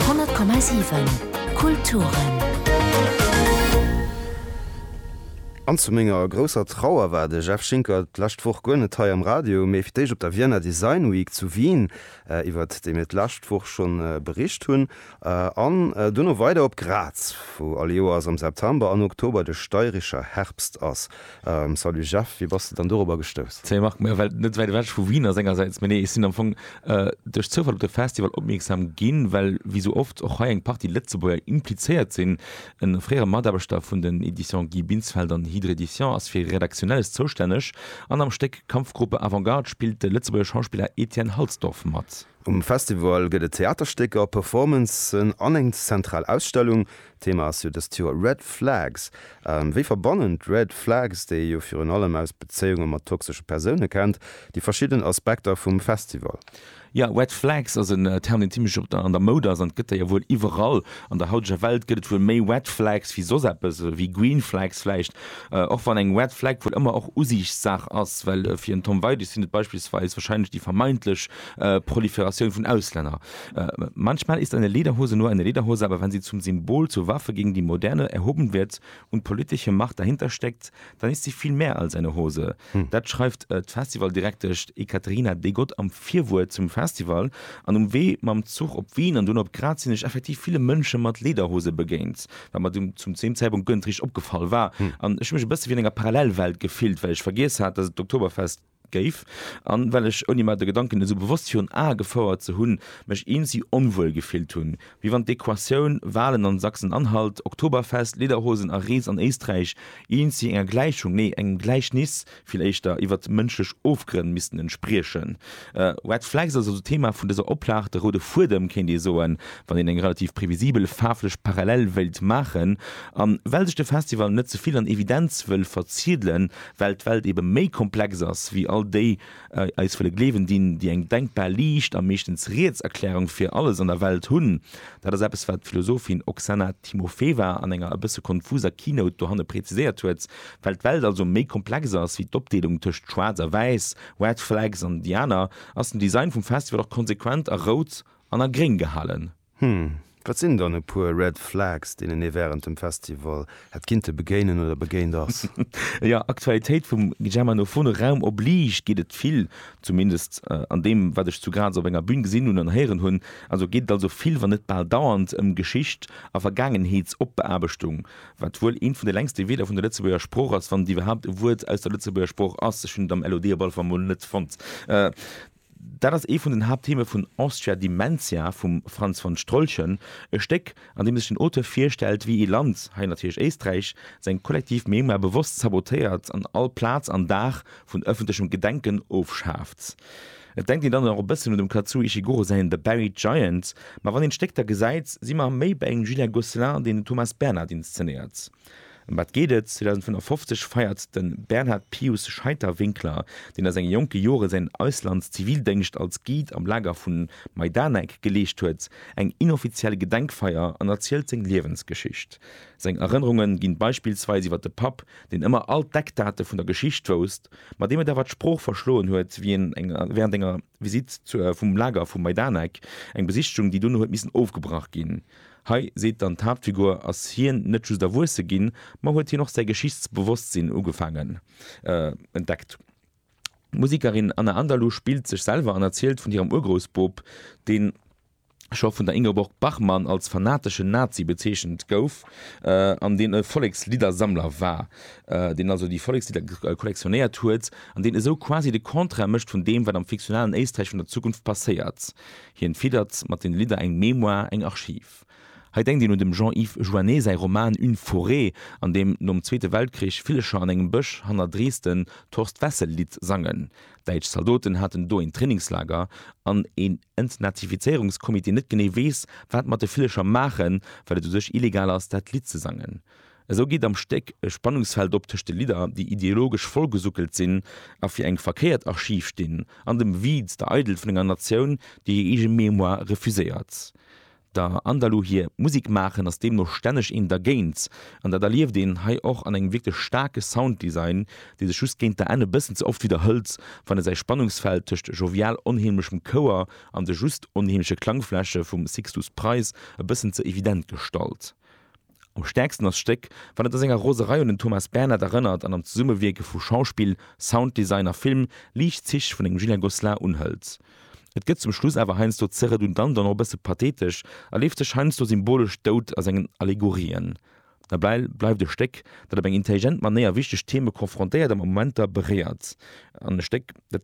100,7 Kulturen. An zu menger grousser Trauer war de Jeff Schinker d'lescht Woch guer net hei am Radio, mee fir d'éischt op der Vienna Design Week zu Wien, iwwert déi mir d'lescht Woch schonn bericht hunn, an duerno weider op Graz, wou all Joers am September an Oktober de Steirischer Herbst ass. Salut Jeff, wéi bass de dann dorobber gestouss? Salut Marc, meng Welt net wäit ewech vu Wien ass engersäits, mee nee ech sinn am Fong duerch Zoufall op de Festival opmierksam ginn, well wéi sou oft och hei eng Partie Lëtzebuerger implizéiert sinn. E fréiere Mataarbechter vun den Editions Guy Binsfeld an Hydre Edition ass fir Redaktionelles zoustänneg an am Stéck Kampfgruppe Avantgarde spillt de Lëtzebuerger Schauspiller Etienne Halsdorf mat. Um Festival gëtt et Theaterstécker, Performancen an eng zentral Ausstellung, D'Thema ass jo dëst Joer Red Flags. Wéi verbannen d'Red Flags, déi ee jo virun allem aus Bezéiunge mat toxesche Persoune kennt, déi verschidden Aspekter vum Festival? Jo, Red Flags ass en Term, deen zimlech op der an der Moud ass. An et gëtt der jo wuel iwwerall. An der hauteger Welt gëtt et wuel méi Red Flags wéi soss eppes, wéi Green Flags vläicht. Och wann eng Red Flag wuel ëmmer och Usiichtsaach ass, well fir en Tom Weidig sinn et beispillsweis warscheinlech déi vermeintlech Proliferatioun vun Auslänner, Manchmal ist eine Lederhose nur eine Lederhose, aber wenn sie zum Symbol, zur Waffe gegen die Moderne erhoben wird und politische Macht dahinter steckt, dann ist sie viel mehr als eine Hose. Dat schreift d'Festivaldirektesch Ekaterina Degot am Virwuert zum Festival. An um Wee mam Zuch op Wien an dunn op Graz sinn ech effektiv ville Mënsche mat Lederhose begéint, wat mer zum zum deem Zäitpunkt guer net richteg opgefall war an ech hu mech e bësse wéi an enger Parallelwelt gefillt, well ech vergiess hat, dass et d'Oktoberfest géif, an well ech, ouni mer de Gedanken esou bewosst virun Ae gefouert ze hunn, mech eensi onwuel gefillt hunn, wéi wann d'Equatioun, Walen an Sachsen-Anhalt, Oktoberfest, Lederhosen a Rees an Éisträich, eensi enger Gläichung, nee, engem Gläichnis vill éischter, iwwert mënschlech Ofgrënn missten entspriechen. Red Flags ass also d'Thema vun dëser Oplag, de roude Fuedem, kéint ee soen, wann een eng relativ previsibel faarflech Parallel wéilt maachen. An well sech de Festival net ze vill an Evidenz wëll verziedelen, Well d'Welt ebe méi komplex ass wéi all déi eis wëlle gleewen dinn, déi eng denkbar liicht a meeschtens riets Erklärung fir alles an der Welt hunn. Dat ass eppes, wat d'Philosophin Oksana Timofeeva an enger e bësse konfuser Keynote dohanne präziséiert huet. Well d'Welt also méi komplex ass wéi d'Opdeelung tëscht Schwaarz a Wäiss, Red Flags an déi aner, ass den Design vum Festival och konsequent a rout an a gréng gehalen. Hm, wat sinn dann e puer Red Flags, deenen ee wärend dem Festival hätt kinnte begéinen oder begéint ass? Jo, Aktualitéit vum Germanophone Raum oblige geet et vill, zumindest an deem, wat ech zu Graz op enger Bün gesinn hunn an héieren hunn. Also geet et also vill, wann net bal dauernd, ëm Geschicht a Vergaangenheetsopbeaarbechtung, wat wuel eent vun de längste Wierder vun der Lëtzebuerger Sprooch ass, wann et iwwerhaapt e Wuert aus der Lëtzebuerger Sprooch ass. Ech hunn et am LOD op alle Fall mol net fonnt. Dat ass ee vun den Haapttheme vun Austria Dimentia vum Franz von Strolchen, e Stéck, an deem sech den Auteur virstellt, wéi ee Land, hei natierlech Éisträich, seng kollektiv Mémoire bewosst sabotéiert an all Plaz an Dag vun ëffentlechem Gedenken ofschaaft. Et denkt een dann och e bëssen un dem Kazuo Ishiguro säin The Buried Giant, ma wann een d'Stéck da gesäit, si mer méi bei engem Julien Gosselin, deen den Thomas Bernhard inszenéiert. Ëm wat geet et? 2055 feiert de Bernhard Pius Scheiter-Winkler, deen a senge jonke Jore säin Auslandszivildéngscht als Guide am Lager vu Majdanek geleescht huet, eng inoffiziell Gedenkfeier an erzielt seng Liewensgeschicht. Seng Erënnerunge ginn beispillsweis iwwer de Papp, deen ëmmer all d'Eckdate vun der Geschicht wousst, ma deem et awer d'Sprooch verschloen huet, wéi en wärend enger Visitt vum Lager vu Majdanek, eng Besichtigung, déi dono huet missen ofgebrach ginn, Hei seet dann d'Haaptfigur, ass hien net just erwuesse ginn, ma huet hien och säi Geschichtsbewosstsinn ugefaangen entdeckt. D'Musekerin Anna Andalu spillt sech selwer an erzielt vun hirem Urgroussboob, deen scho vun der Ingeborg Bachmann als fanateschen Nazi bezeechent gouf an deen e Volleksliddersammler war, deen also déi Vollekslidder kollektionéiert huet an deen esou quasi de Contraire mécht vun deem, wat am fiktionalen Éisträich vun der Zukunft passéiert. Hien fiddert mat den Lidder eng Mémoire, eng Archiv. Hei denkt een un dem Jean-Yves Joannet säi Roman Une forêt, an deem nom Zweete Weltkrich Villecher an engem Bësch hanner Dresden d'Horst-Wessel-Lidd sangen. Däitsch Zaldoten haten do een Trainingslager, an een Entnazifizéierungscomité net genee weess, wat mat de Villecher maachen, well et u sech illegal ass, dat Lidd ze sangen. Esou geet am Stéck e Spannungsfeld op tëscht de Lidder, déi ideologesch vollgesuckelt sinn a fir eng verkéiert Archiv stinn, an dem Viz, der Eidelt vun enger Natioun, déi hir eege Mémoire refuséiert. Der Andalou hir Musek maachen ass deemno stänneg een dergéint, an dat erlieft een hei och an engem wierklech staarke Sounddesign, dee sech just géint der Enn e bëssen ze oft widderhëlt, wann e säi Spannungsfeld tëscht jovial onheemlechem Chouer an de just onheemleche Klangfläche vum Sixtus Price e bëssen ze evident gestalt. Am stäerksten ass d'Stéck, wann et a senger Roserei un den Thomas Bernhard erënnert an am Zesummewierke vu Schauspill, Sounddesign a Film liicht Zich vun engem Julien Gosselin unhëlt. Et gëtt zum Schluss awer heiansdo ze redundant an och e bësse pathetesch a leeft sech heiansdo symbolesch dout a sengen Allegorien. Dobäi bleift e Stéck, dat op eng intelligent Manéier wichteg Theme confrontéiert a Momenter beréiert an e Stéck, dat,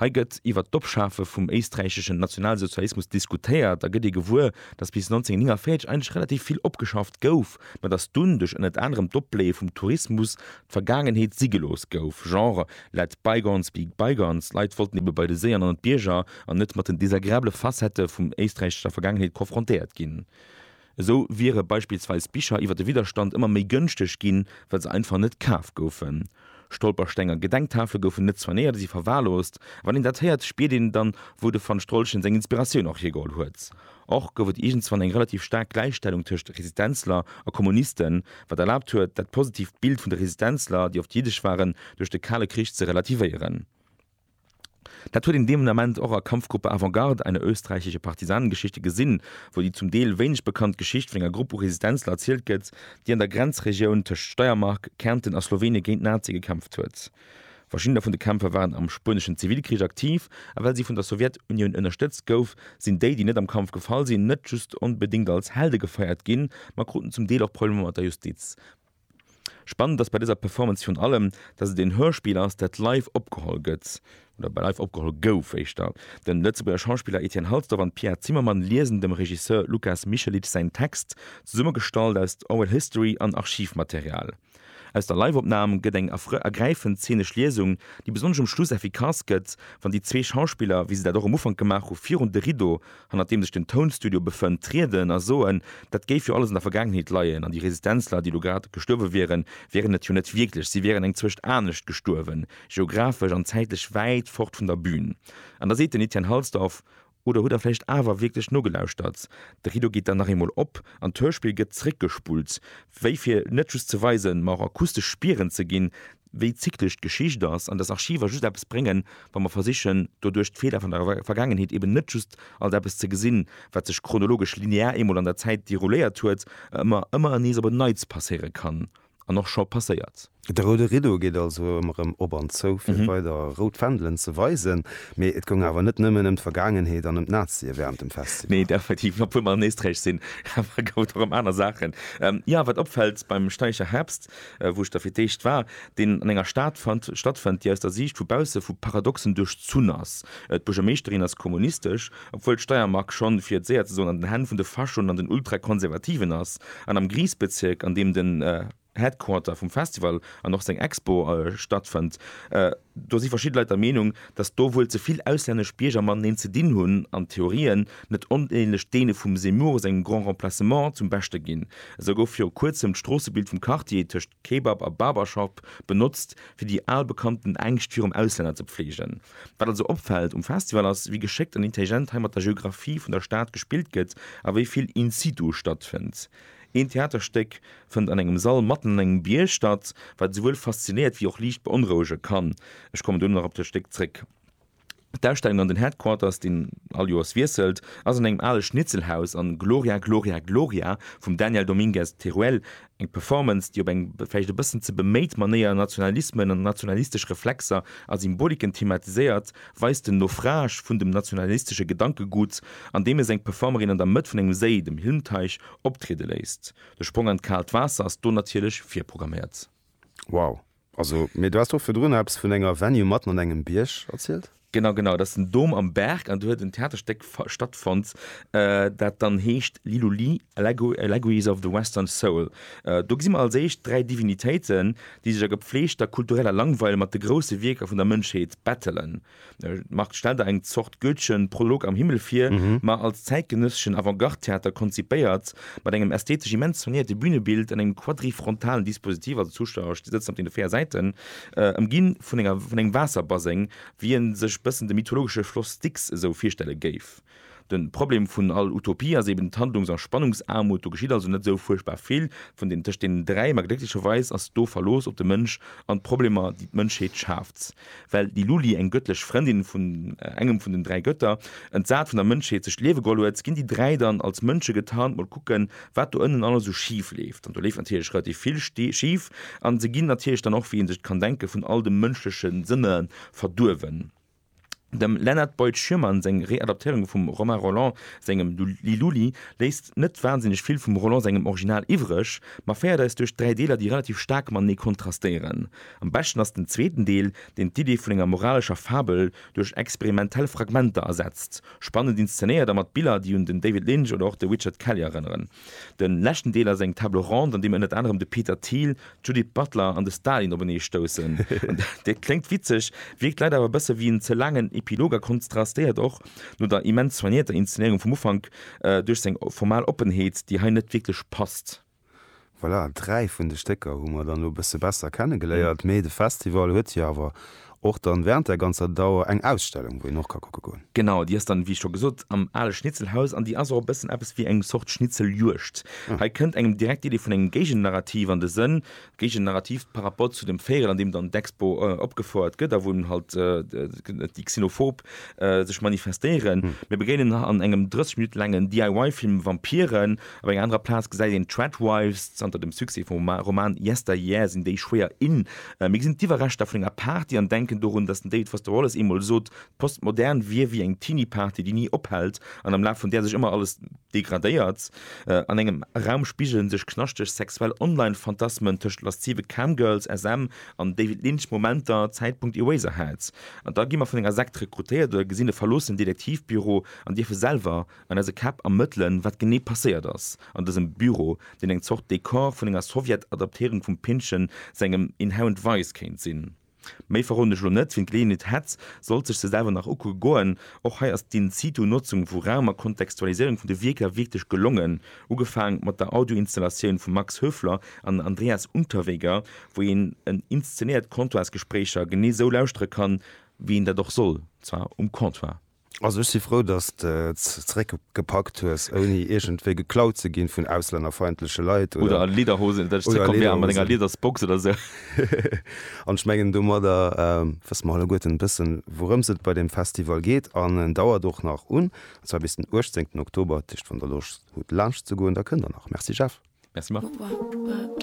Hei gëtt iwwer d'Ofschafe vum éisträicheschen Nationalsozialismus diskutéiert a gëtt ee gewuer, datt bis 1949 eigentlech relativ vill opgeschafft gouf, ma datt dunn duerch ënnert anerem d'Opbléie vum Tourismus d'Vergaangenheet si gelooss gouf, genre let bygones be bygones. D'Leit wollten ebe bei de Séier an ënnert d'Bierger an net mat den desagreabele Facettë vum éisträichescher Vergaangenheet konfrontéiert ginn. Esou wiere beispillsweis Bicher iwwer de Widderstand ëmmer méi gënschteg ginn, well se einfach net kaf goufen. Stolpersteng a Gedenktafele goufen net soignéiert a si verwahrloost. Wann een dat héiert, spiert een dann, wou de van Strolchen seng Inspiratioun och hiergeholl huet. Och gouf et iergendzwann eng relativ staark Gläichstellung tëscht Resistenzler a Kommunisten, wat erlaabt huet, dat positiivt Bild vun de Resistenzler, déi oft jiddesch waren, duerch de Kale Krich ze relativéieren. Dat huet een dee Moment och a Kampfgruppe Avant-Garde, einer österreichische Partisanengeschichte, gesinn, wou déi zum Deel wéineg bekannt Geschicht vun enger Grupp u Resistenzler erzielt gëtt, déi an der Grenzregioun tëscht Steiermark, Kärnten a Slowenien géint d'Nazie gekämpft huet. Verschiddener vun de Kämpfer waren am spueneschen Zivilkrich aktiv, a well si vun der Sowjetunioun ënnerstëtzt gouf, sinn déi, déi net am Kampf gefall sinn, net just onbedéngt als Helde gefeiert ginn, ma kruten zum Deel och Problemer mat der Justiz. Spannend ass bei dëser Performance virun allem, datt et een Hörspiel ass, dat live opgeholl gëtt, oder live opgeholl gouf éischter. De Lëtzebuerger Schauspiller Etienne Halsdorf an d'Pia Zimmermann liesen dem Regisseur Lukas Michelic säin Text, zesummegestallt aus Oral History an Archivmaterial. Aus der Live-Opnam gëtt eng ergräifend zeenesch Liesung, déi besonnesch um Schluss effikass gëtt, wann déi zwee Schauspiller, wéi se dat och um Ufank gemaach hu, virun de Rideau hannert deem sech den Tounstudio befënnt, trieden a soen, dat géif jo alles an der Vergaangenheet leien an déi Resistenzler, déi elo grad gestuerwe wieren, wieren et jo net wierklech, si wieren eng Zwëscht anescht gestuerwen, geographesch an zäitlech wäit fort vun der Bün. An da seet den Etienne Halsdorf, Oder hutt Der vläicht awer wierklech nogelauschtert? De Rideau geet dann nach eemol op an d'Hörspill gëtt zeréckgespullt, wéi fir net just ze weisen, ma och akustesch Spieren ze ginn, wéi zyklesch d'Geschicht ass an dass Archiver just eppes bréngen, wa mer versichen, doduerch d'Feeler vun der Vergaangenheet eben net just als eppes ze gesinn, wat sech chronologesch linear eemol an der Zäit dérouléiert huet a ëmmer, ëmmer nees op en Neits passéiere kann an och scho passéiert. De roude Rideau geet also ëmmer erëm op an zou, fir weider rout Fändelen ze weisen. Mee et goung awer net nëmmen ëm d'Vergaangenheet an ëm d'Nazie wärend dem Festival. Nee, effektiv, obwuel mer an Éisträich sinn, awer gouf et och ëm aner Saachen. Jo, wat opfält beim Steicher Herbst, wou ech der fir d'éischt war, deen an enger Stad stattfënnt, déi aus der Siicht vu bausse vu Paradoxen duerchzunn ass. D'Buergermeeschterin ass kommunistesch, obwuel d'Steiermark schonn, fir et séier ze soen, an den Hänn vun de Faschoen an den Ultrakonservativen ass, an am Griesbezirk, an deem den Headquarter vum Festival an och seng Expo stattfënnt, do si verschidde Leit der Meenung, datt do wuel ze vill auslännesch Bierger mateneen ze dinn hunn an d'Theorien net onähnlech deene vum Zemmour sengem Grand Remplacement zum Beschte ginn. Esou gouf viru kuerzem d'Stroossebild vum Quartier tëscht Kebab a Barbershop benotzt, fir déi al bekannten Ängscht virum Auslänner ze befleegen. Wat also opfält um Festival ass, wéi geschéckt an intelligent hei mat der Geographie vun der Stad gespillt gëtt a wéi vill in situ stattfënnt. Een Theaterstéck fënnt an engem Sall matten an engem Bierg statt, wat esouwuel faszinéiert wéi och liicht beonrouege kann. Ech kommen dono nach op dat Stéck zréck. D'Ausstellung an den Headquarters, deen all Joers wiesselt, ass an engem ale Schnitzelhaus an Gloria, Gloria, Gloria vum Daniel Dominguez Teruel, eng Performance, déi op eng vläicht e bëssen ze beméit Manéier Nationalismen an nationalistesch Reflexer a Symboliken thematiséiert, weist den Naufrage vun dem nationalistesche Gedankegut, andeem e seng Performerin an der Mëtt vun engem Séi, dem Hilmteich, optriede léisst. De Sprong an d'kaalt Waasser ass do natierlech virprogramméiert. Wow! Also, mee du haas do virdrun eppes vun enger Venue matten an engem Bierg erzielt? Genau, genau, dat ass den Dom am Berg an do huet en Theaterstéck stattfonnt, dat dann heescht Lilu Li, Allegories of the Western Soul. Do gesi mer als éischt dräi Divinitéiten, déi sech a gepfleegter kultureller Langweil mat de grousse Wierker vun der Mënschheet bettelen. D'Marthe stellt der eng Zort goetheschen Prolog am Himmel vir, ma als zäitgenësseschen Avantgarde-Theater konzipéiert, mat engem ästhetesch immens soignéierte Bünebild an engem quadrifrontalen Dispositiv, also d'Zuschauer sëtzen op deene véier Säiten, ëmginn vun engem Waasserbaseng, wéi ee sech bëssen de mythologesche Floss Styx esou virstelle géif. Den Problem vun all Utopie ass eben d'Handlungs a Spannungsaarmut. Do geschitt also net sou fuerchtbar vill vun den tëscht deenen dräi, ma glécklecherweis ass do Verlooss op de Mënsch an d'Problemer déi d'Mënschheet schaaft. Well déi Luli, eng gëttlech Frëndin vun engem vun den dräi Gëtter, entsat vun der Mënschheet sech d'Liewe geholl huet, ginn déi dräi dann als Mënsche getarnt mol kucken, wat do ënnen alles sou schif leeft. An do leeft natierlech relativ vill schif an se ginn natierlech dann och, wéi ee sech et kann denken, vun all de mënschleche Sënne verduerwen. Dem Leonard Boyd Schirmann seng Readaptéierung vum Romain Rolland sengem Liluli léisst net wansinneg vill vum Rolland sengem Original iwwreg, ma féiert eis duerch dräi Deeler, déi relativ staark matenee kontrastéieren. Am beschten ass den zweeten Deel, deen d'Idee vun enger moralescher Fabel duerch experimentell Fragmenter ersetzt, spannend inszenéiert a mat Biller, déi un den David Lynch oder och de Richard Kelly erënneren. Den leschten Deel ass eng Table Ronde an deem ënnert anerem de Peter Thiel, d'Judith Butler an de Stalin openee stoussen. Dat kléngt witzeg, wierkt leider awer e bësse wéi en ze laangen Epilog a konstrastéiert och, no der immens soignéierter Inszenéierung vum Ufank, duerch seng formal Oppenheet, déi hei net wierklech passt. Voilà, dräi vun de Stécker hu mer dann elo e bësse besser kenne geléiert, mee de Festival huet jo awer Och dann während der ganzer Dauer eng Ausstellung wou een och ka kucke goen? Genau, déi ass dann wéi scho gesot am ale Schnitzelhaus an déi ass och e bëssen eppes wéi eng Zort Schnitzeljuegd. Hei kënnt engem direkt d'Idee vun engem Géigennarrativ an de Sënn, Géigennarrativ par rapport zu dem Véirel an deem dann d'Expo opgefouert gëtt a wou en halt déi xenophob sech manifestéieren. Mir begéinen an engem 30 Minutte laangen DIY-Film Vampiren. Op enger anerer Plaz gesäit een d'Tradwives. Zanter dem Succès vum Roman Yesteryear sinn déi schwéier in. Mir gesinn d'Iwwerreschter vun enger Party an denken dorun, datt den David Foster Wallace eemol sot, d'Postmodern wier wéi eng Teenie-Party, déi ni ophält an am Laf vun där sech ëmmer alles. Degradéiert. An engem Raum spigelen sech knaschteg sexuell Online-Phantasmen tëscht laszive Cam-Girls, SM, an David Lynch-Momenter, Zäitpunkt Eraserhead. An da gi mer vun enger Sekt rekrutéiert oder gesinn e verloossen Detektivbüro an dierfe selwer an eise Käpp ermëttelen, wat genee passéiert ass an dësem Büro, deen eng Zort Dekor vun enger Sowjet-Adaptéierung vum Pynchon sengem Inherent Vice kéint sinn. Méi verroden ech lo net, wien d'Geleeënheet hätt, sollt sech se selwer nach ukucke goen. Och hei ass d'in situ Notzung vu Raum a Kontextualiséierung vun de Wierker wierklech gelongen, ugefaang mat der Audio-Installatioun vum Max Höfler an Andreas Unterweger, wou een en inszenéiert Comptoirsgespréicher genee sou lauschtere kann, wéi een dat och soll, zwar um Comptoir. Also ech si frou, dass de et zeréck gepackt hues, ouni iergendwéi geklaut ze ginn vun auslännerfeindleche Leit oder. Oder a Lederhosen, dass ech zeréck komm wäre mat enger Liedersbox oder sou. An ech mengen domadder wësse mer alleguerten e bëssen, wourëms et bei deem Festival geet. An en dauert och nach un, an zwar bis den 18 Oktober. Dat heescht, wann der Loscht hutt laanscht ze goen, da kënnt der nach. Merci Jeff. Merci Marc.